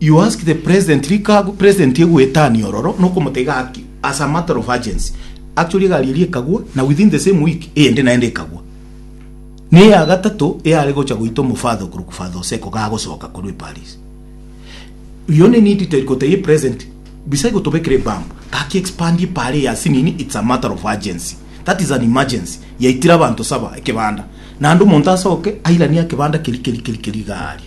You ask the president rikabu president egoetania ororo nokomotebia gaki as a matter of urgency actually egari eria ekagwa na within the same week eyende naende ekagwa na eya gatato eyare gocha goita omofather okorokwa father oseko gagosoka korwa eparis you only need to gotebia president bisa igotobekera ebambu gaki expand epara eya sinini it's a matter of urgency that is an emergency yaitire abanto saba ekebanda naende omonto asoke airanie akebanda keri keri keri keri iga aria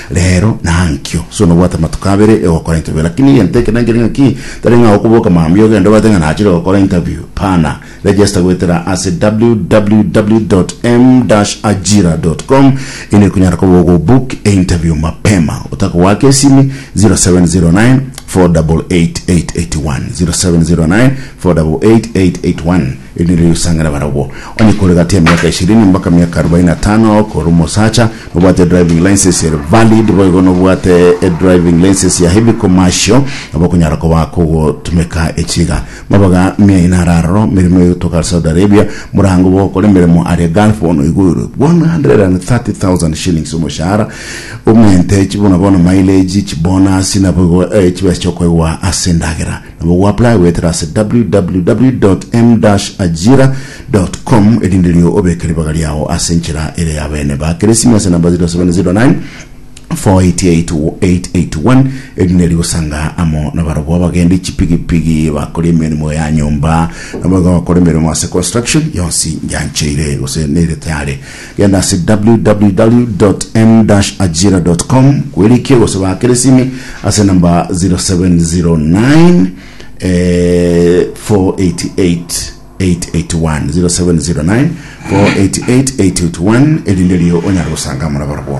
Reero nankio, so nobwate amatuko abere egokora interview, lakini egento eke nankire ng'aki, tari ng'a okoboka mambia ogende obate ng'a nachire gokora interview, bana. Register goetera ase www.m-ajira.com erio ekonyara koba ogobook einterview mapema otakogoaka esimi, 0709 488 881, 0709 488 881. Erinde riria osang'ana barabwo, onye kore gati ya miaka ishirini mpaka miaka arubaini na tano, kore omosacha, nobwate edriving license ere valid, boigo nobwate edriving license ya heavy commercial, nabo okonyara koba kogotumeka echiga. Mabaga miaino are aroro, meremo egotoka ase Saudi Arabia, morango bw'ogokora emeremo aria Gulf bono oigoirwe 130,000 shillings omoshahara, omente, chibona bono mileage, chibonasi, naboigo chibesa chiokoegwa ase endagera. Nabo goapply goetera ase www.m-ajira.com erinde riao obeke ribaga riao ase enchera ere y'abene. Baakere esimi ase namba 0709 488881 erinde rigosanga amo nabarabwo abagendi chipigipigi, bakori emeremo ya nyomba, naboigo abakora emeremo ase construction yonsi yancheire gose nere tayari. Genda ase www.m-ajira.com kwerikie gosaba keresimi ase namba 0709488881 0709488881 erinde erio onyare gosangamora barabwo.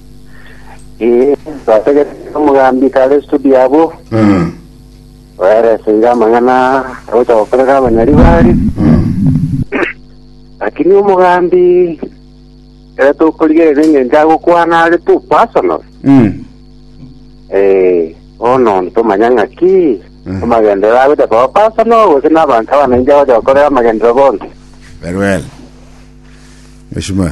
Ee, twategereire omogambi kare studio abwo, Mm. oereseire amang'ana agocha gokorera abanyari bare, Mm. lakini omogambi ere tokorigerera eng'encho agokwana are tu personal. Mm. Eh, bono ntomanya ng'aki Mm. amagendero agocha koba personal gose n'abanto abananche agocha gokorera amagendero bonsi. Very well. Mheshimiwa.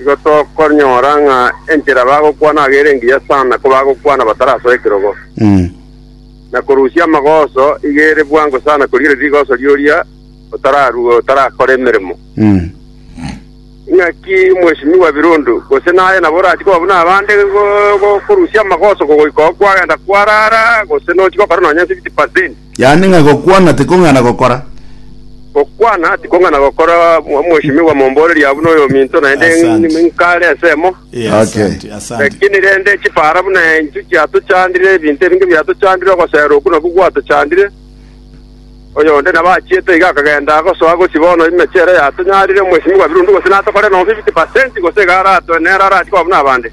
Igo tokonyora ng'a enchera bagokwana aye ere engiya sana ko bagokwana batarasoa ekerogo. Mm. Na korusia amagoso iga ere bwango sana korigereria rigoso ri'oria otararue otarakore emeremo. Mm. Ing'aki Mweshimiwa Birundu, gose naye nabo orachie koba buna abande go- go- korusia amagoso kogoika oo kwagenda kwarara, gose nochi gokora nonya 50%. Yaani ng'a gokwana tikong'ana gokora. Gokwana tikong'ana gokora, mwa- mweshimiwa momboreria buna oyominto naende Asante. n- nkare ensemo. Eh, Okay. asante, asante. Lakini rende chipara buna enchwe chiatochandire, ebinto ebinge biatochandire, ogosera oku naku gwatochandire. Oyonde nabo achiete iga akagenda agosoa gochi bono emechero yatonyarire omweshimiwa birundu gose natokore nobo 50% gose iga aratoe nere arachie koba buna abande.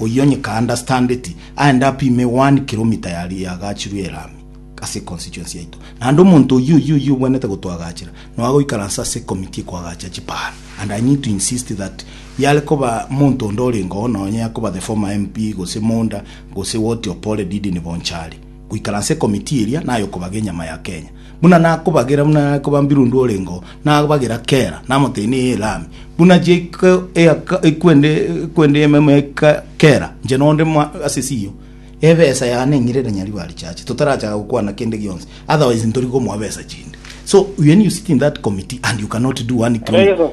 Oyio onye ka understandeti, aende apime one kilometer yaria yagachirwe elami ase econstituency yaito. Naende omonto oyio oyio oyio obwenerete gotoagachera noe agoikaransa ase ecommittee ekoagacha chiparo. And I need to insist that yare koba monto onde orenge oo nonye akoba the former MP gose Monda gose what Opore did in Bonchari, goikaransa ecommittee eria naye okobaga enyama ya Kenya. Buna nakobagera buna are kobambirwe onde orengeo, nabagera kera, namoteenia eye Elami, buna chiaika eaka ekwende ekwende y'ememu yaika kera, inche nonde mwa ase esio. Ebesa yane neng'irere nyaribo a richache, totarachaka gokwana kende gionsi, otherwise ntori komoa besa chinde. So when you sit in that committee and you cannot do one kilo,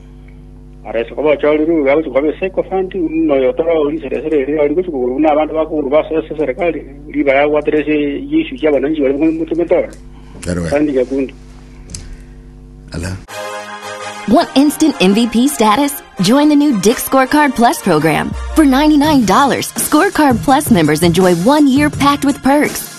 Arese koba ochorire orure agochie koba ase ecoventu, buna oyo otari o risera esere eri ori gochia kogorwa buna abanto ba kogorwa base ase eserekari, ribaga agwatera ase chiiswi chia abananchi bare motomete ore. Kero gaka. Kandi nyakunde. Ala. Want instant MVP status? Join the new Dick Scorecard Plus program. For $99, Scorecard Plus members enjoy one year packed with perks,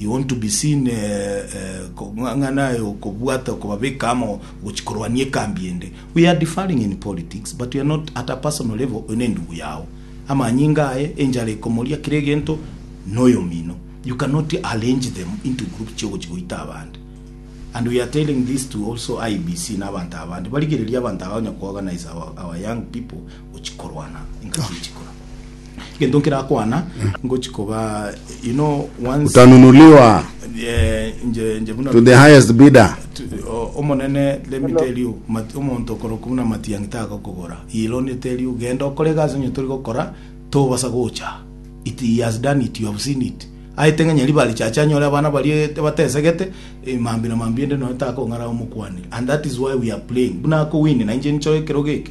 You want to be seen kong'ang'ana aye okobwata okobabeka amo gochia korwania ekambi ende. We are differing in politics but we are not at a personal level oyo nendugu yao amanyinga aye enchara ekomoria kera egento noyomino you cannot arrange them into group chia ogochia goita abande and we are telling this to also IEBC na abanto abande barigereria abanto aba onya kuorganize our, our young people Ngochia korwana ingaki ngochia kora gento nkerakwana ngochia koba you know once Utanunuliwa eh, nje nje buna to the highest bidder. O- omonene let me tell you mat- omonto okoroku buna matiang'i tagokogora he will only tell you genda okore egasi onye tori gokora tobasa gocha it he has done it you have seen it aete ng'a nyari bare chacha anyore abana barie batesegete eh, mambi na mambi ende noyo takong'ara omokwanire and that is why we are playing buna akowini na inche ninchore ekero geke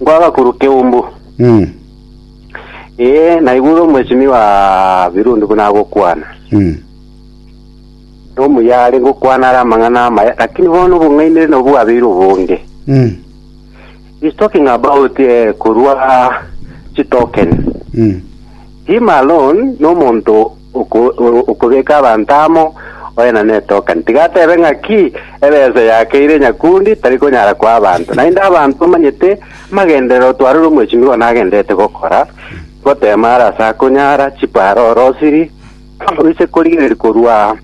Nkwagakuru keumbu. Mm. Ee, naigure omosimi wa Birundi buna agokwana. Mm. Nomuya are gokwana are amang'ana amaya, lakini bono obong'ainire nobwo bwabeire obonge. Mm. He's talking about eh, korwa chitokeni. Mm. Him alone nomonto Oko, o- okobeka abanto amo, oyena netokani, tiga atebe ng'a ki ebeeso yakeire nyakundi tari konyara koa abanto. Naende abanto omanyete amagenderero otwarire omwechimi bono agendererete gokora, gotema are ase akonyara, chiparo ore osiri, oise korigereria korwa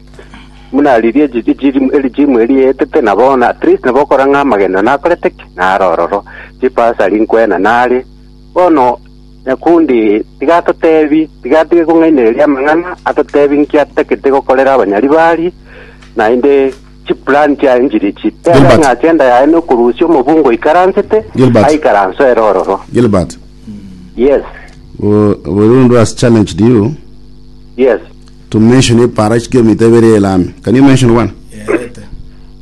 buna riria echi- echi- erichimu eri rietete, na bono at least nabo okora ng'a amagenderero nakorete ki? Naro ororo. Chipasari nkwena nare, bono Nyakundi, tiga atotebi, tiga atige kong'ainereria amang'ana, atotebi inki atagete gokorera abanyaribari, naende chiplani chiaye nchiri chi. Tebe Gilbert. ng'a agenda yaye nokorusia omobungo oikaransete, Gilbert. aikaranse ere ororo. Gilbert, Yes, we, we Rundu has challenged you yes. to mention a parish kilomita ibere ya Elami. Can you mention one? Yaete.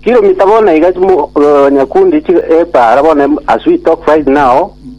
Kilomita bono iga chimo- eh, Nyakundi chi- epara bono em- as we talk right now,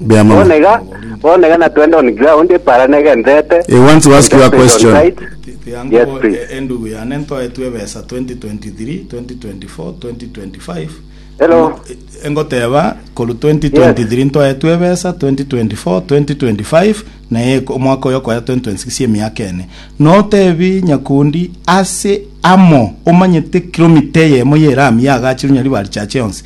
Mbuya mono. Bono iga, bono iga natwende on ground para negenderete. I want to ask you a Contacted on question. site. Tiango Yes, bo- please. e- endugu yane ntoetwe ebesa 2023 2024 2025 Hello. Ngo- e- engoteba koru 2023 ntoetwe ebesa 2024 2025 naye ko- omwaka oyo okoya 2026 emiaka ene notebi nyakundi ase amo omanyete kilomita eyemo ya erami yagachirwe nyaribari chache yonsi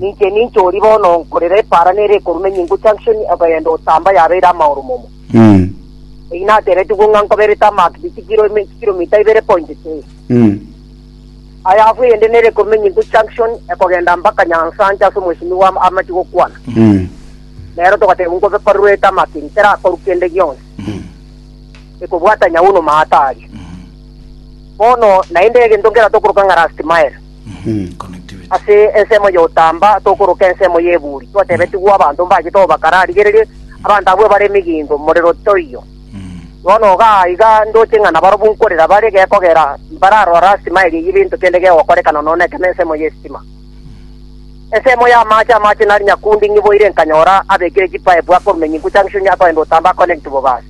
Ninche ninche oria bono nkorera epaara nere ekoruma enyingu Junction okogenda Utamba yabeire amaoro momo. Eyi natebetigwe ng'a nkobere Tarmac bi chikirome chikiromita ibere point three. Aya afu eyende nere ekoruma enyingu Junction ekogenda mpaka Nyansancha ase omosimi bwa amachi gokwana. Nero togatebwa nkobe korerwa etarmac eri terakorwa kende gionsi. Ekobwata nyauno maata aria. Bono naende egento nkerato okoroka ng'a last mile. Ase ensemo y'otamba tokoroka ensemo y'eburi, twatebetigwa abanto mbachete obakara arigererie abanto abwo ebare emigingo, morero toiyo. Bono iga iga ndoche ng'a nabarobwo nkorera bare gekogera mbararora lasima eria y'ebinto kende gegokorekana nono ekero nensemo y'esitima. Ensemo y'amaache amaache nari nyakundi ng'iboire nkanyora abekire chipaepu akorumia enyinku junction akoenda otamba aconnect bobasi.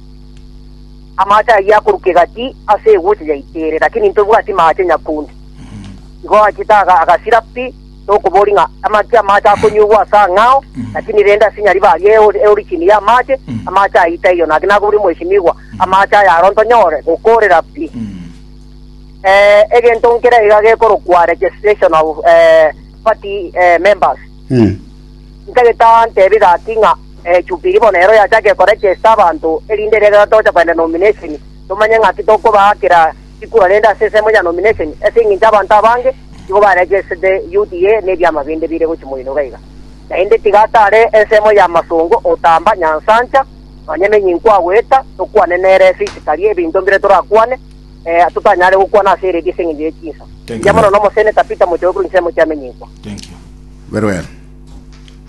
Amaache ayio akoruka egati ase eguche yaitire, lakini ntobwati maache nyakundi. Igo achete aga- agasira pi, tokobori ng'a amache amache akonyugwa ase ang'ao, lakini rende ase nyariba aria eori- eori chini y'amache, amache aye taiyo. Naki nakoboria omwesimigwa, amache aya aro ntonyore gokoorera pi. Eh, egento nkere iga gekorokwa registration of eh, party eh, members Eh. ntagete ntebe gaki ng'a eh, Jubilee bono ero yachake koregesta abanto erinde rero tocha koenda nomination tomanye ng'aki tokobaakera Tikuro rende ase ensemo ya nomination, ase engencho abanto abange nigo ba registered UDA ne ebiama binde bire gochia moino iga iga. Naende tiga atare ensemo ya masongo otamba nyansancha, nonya emenyi nkwagoeta, tokwane nere physically ebinto mbire torakwane, eh, totanyare gokwana ase eredio ase engencho ye chinsa. Thank you Mbuya mono very. nomoseneta Peter Mochoe korwa ensemo chiamenyinkwa. Thank you. Very well.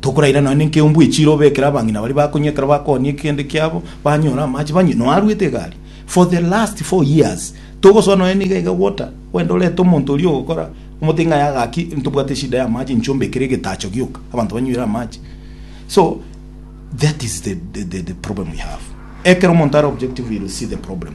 Tokoraira nonya nenkeumbwa echiire obekere abang'ina baria bakonywa ekero bakoonia ekegende kiabo, banyore amache banywe, noaruete egari for the last four years. Togosoa nonya niga iga gwota gwende orete omonto oria ogokora omote ng'a yaga ki ntobwate eshida ya amache inche ombekere egetacho gioka abanto banywire amache. So that is the the the problem we have. Ekero omonto are objective you will see the problem.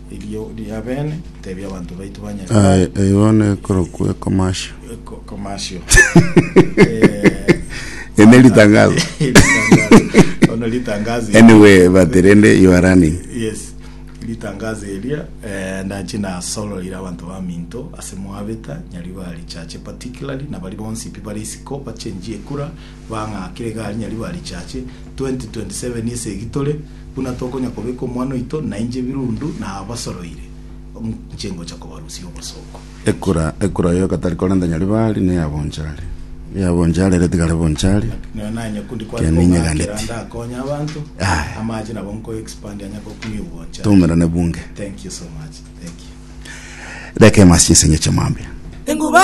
Erio riabene tebia abanto baito ba Nyasae. Aye, eyio nekorokwa ekomashio. Eko- Commercial. Eh, Ene ritangazo. Ritangazo. Ono ritangazo. Anyway, but rende you are running. Yes. Ritangazo eria eh, ndachi nasoroire abanto ba minto ase mwabeta nyari bari chache particularly na bari bonsi pi bari isiko bachenjie ekura bang'akire iga rinya riba richache, 2027 esegi tore, buna tokonya kobeka omwana oito, nainche ebirundu nabasoroire, nchigocha kobarusia obosooku. Ekura, ekura oyo gatari korenta nyaribari, neya bonchari. Eya bonchari ere tigare bonchari. Nero nanye kundi kware Kende kong'akera inyeganeti. ndakonye abanto, Aye. amache nabo nko expand anya gokumia obwanchani. Toumerane bunge. Thank you so much. Thank you. Reka emasi ense ng'eche mambia. Engubare.